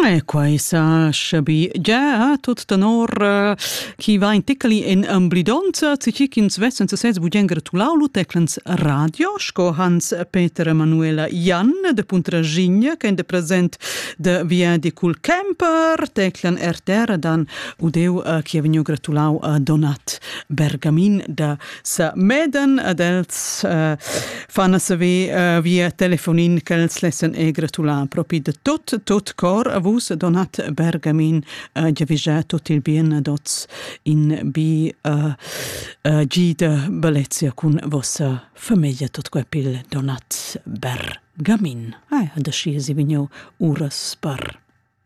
E quai sa schabi già tut tenor eh, chi va in tecli in amblidonza, tgi ch'ins vessen sesez bugen gratulau lu teclens radio, sco Hans Peter Emanuela Jan de Puntragigna, che è present de via di Cul Kemper, teclan RTR dan udeu eh, chi ha vegnu gratulau a Donat Bergamin da sa meden ad els uh, fan a saver uh, via telefonin ch'els lessen e gratular propi de tot tot cor a vus Donat Bergamin uh, giavisà tot il bien ad oz in bi uh, uh, gida bellezia cun vossa famiglia tot quepil Donat Bergamin. Ai, ah, da sci si vigno uras par.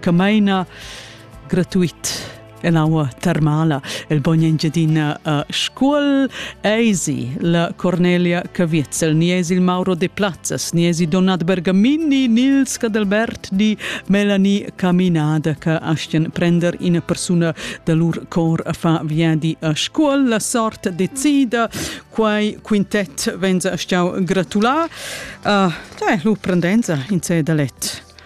che meina gratuit en aua termala. El bogn Engiadina a Scuol eisi la Cornelia Caviezel, ni esi il Mauro de Plazzas, ni esi Donat Bergamini, Nils Cadelbert di Melanie Caminada che astien prender ina persuna da lur cor a fa viadi a Scuol. La sort decida, quai quintet venza a stiau gratulà. Uh, da è lu prendenza in se da let.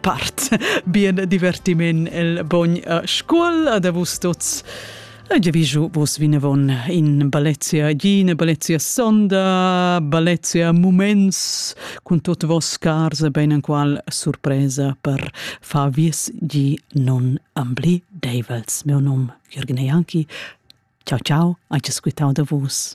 part. Bien divertiment el bogn a scuol da vus tuts. Ege viju vos vinavon in Balezia Gine, Balezia Sonda, Balezia Muments, cun tot vos cars ben en qual surpresa per fa vies gi non ambli Davels. Mio nom Jürgen Janki. Ciao ciao, anche squitau da vus.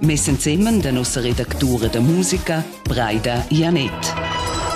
Meis ensemen da nossa redactura da musica, Braida Janett.